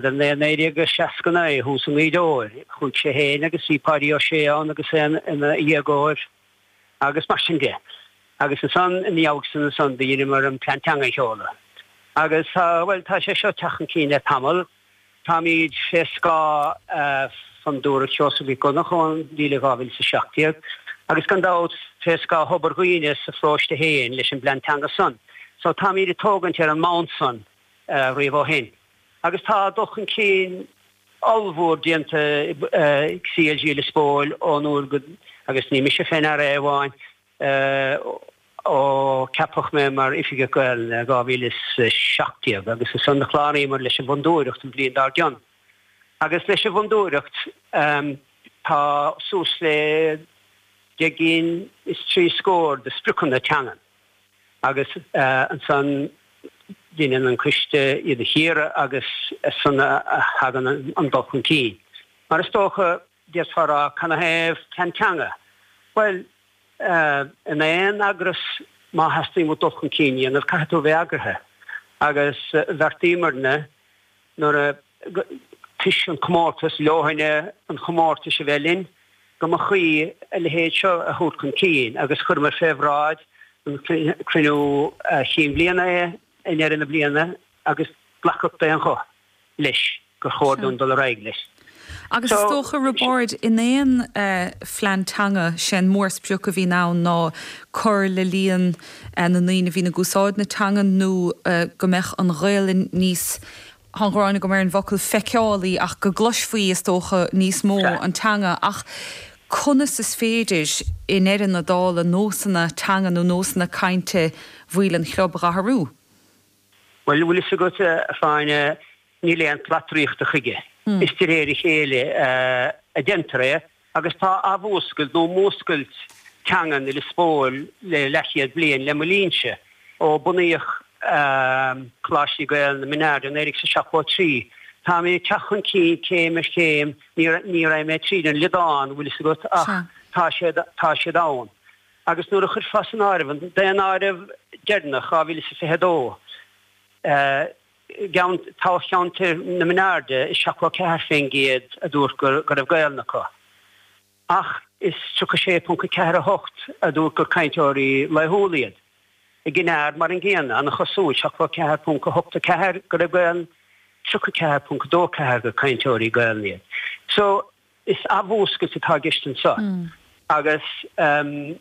Sa mbliain 1969, thuas i nGaoth Dobhair, chuaigh sé féin agus bhí Páidí Ó Sé ann agus é ina dhéagóir agus mar sin de. Agus is ann, ina theannta san, do dheineamar an Plean Teanga a sheoladh. Agus tá, bhuel, tá sé seo ag teacht chun cinn le tamall. Táimid fé scáth Fondúireacht Sheosaimh Mhic Dhonnacha ón bhliain 2017 agus gan dabht fé scáth Thobar Dhuibhne sa pharóiste féin leis an bPlean Teanga san. So táimid ag tógaint ar an mbonn san riamh ó shin. Agus tá dul chun cinn ollmhór déanta ag CLG Lios Póil ón uair go, agus ní mise fé ndear é amháin, ó ceapadh mé mar Oifigeach Gaelainne i 2017 agus is ann a chláraíomar leis an bhFondúireacht an bhliain dár gcionn. Agus leis an bhFondúireacht tá suas le deich gcinn is trí scór de spriocanna teangan. agus ansan deineann an coiste iad a chíoradh agus as san a thagann an dul chun cinn. Mar is dócha, d'fhéadfá a rá, canathaobh plean teanga? Bhuel, in aon eagras má theastaíonn uait dul chun cinn a dhéanamh caithfidh tú a bheith eagraithe agus bheartaíomairne nuair a toisc an comórtas, leoithne an chomórtais a bheith linn, go mba chuí a leithéid seo a thabhairt chun cinn agus chuireamar fé bhráid an Chruinniú Chinn Bhliana é i ndeireadh na bliana agus glacadh d'aon ghuth leis gur chóir dúinn dul ar aghaidh leis. Agus is dócha, a Roibeaird, in aon phlean teanga, sé an mórsprioc a bhíonn ann ná cur le líon na ndaoine a bhíonn ag úsáid na teanga nó go mbeadh an Ghaelainn níos Tá an ghráin agam ar an bhfocal 'feiceálaí' ach go gcloisfaí, is dócha, níos mó an teanga. Ach conas is féidir, i ndeireadh na dála, nósanna teanga nó nósanna cainte bhaill an chlub a dhathrú? Bhuel, bhfuil fhios agat, a Shláine, níl aon tslat draíochta chuige. Is de réir a chéile a deintear é. Agus tá athmhúscailt, nó múscailt teangan i Lios Póil le leathchéad bliain, le mo linnse. Ó bunaíodh Coláistí Gaelainne na Min Airde i 1973, táimid ag teacht chun cinn céim ar chéim, ní raghaidh mé tríd an liodán, bhfuil fhios agat, ach tá siad, tá siad ann. Agus nuair a chuirfeá san áireamh an daonáireamh deireanach, 2022, eh, i dtoghcheantar na Min Airde is 74% a dúirt go raibh Gaelainn acu ach is 36.48 a dúirt gur cainteoirí laethúla iad. I gCinn Aird mar an gcéanna, ana-chosúil, 74.84 go raibh Gaelainn, 34.24 gur cainteoirí Gaelainne iad. Is athmhúscailt atá i gceist anseo agus,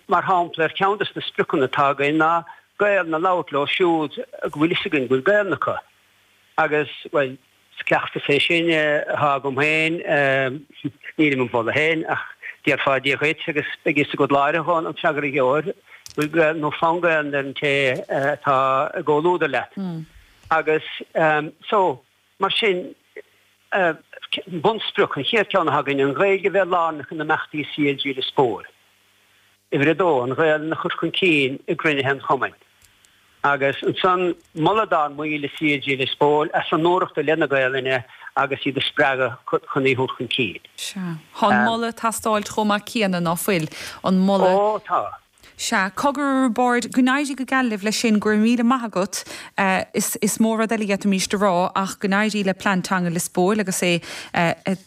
mar shampla, ar cheann de na spriocanna atá againn ná Gaelainn a labhairt leo siúd go bhfuil fhios againn go bhfuil Gaelainn acu. Agus, bhuel, is cleachtas é sin atá agam féin, ní ag moladh féin ach déarfá Dia dhuit agus beidh fhios agat láithreach ón bhfreagra a gheobhair go bhfuil Gaelainn nó fonn Gaelainne ar an té atá i gcomhluadar leat. Agus, so, Mar sin, bunsprioc an chéad cheann a thagann, an Ghaeilge a bheith lárnach in imeachtaí CLG Lios Póil. Uimhir a dó, an Ghaelainn a chur chun cinn i gcruinnithe an Chumainn. Agus ansan, moladh dár mbaill i CLG Lios Póil as a n-iarrachtaí leis an nGaelainn agus iad a spreagadh chun í a thabhairt chun cinn. Sea. Tá an moladh ag teastáil chomh maith céanna, nach bhfuil? An moladh. Ó, tá. Sea, cogar a Roibeáird, go n-éirí go geal libh leis sin, go raibh míle maith agat, is mó rud eile a d'fhéadfaimís a rá ach go n-éirí le Plean Teanga Lios Póil agus é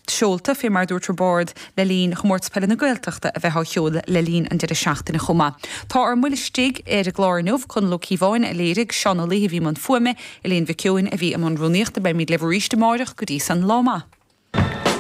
seolta, fé mar a dúirt Roibeard, le linn Chomórtas Peile na Gaeltachta a bheith á sheoladh le linn an deireadh seachtaine chomh maith. Tá ár mbuille istigh ar an gclár inniu, Conall Ó Cíobháin a léirigh, Seán Ó Laoithe a bhí i mbun fuaime, Elaine Mhic Eoin a bhí i mbun rúnaíochta. Beimid libh arís amárach, go dtí san, lá maith.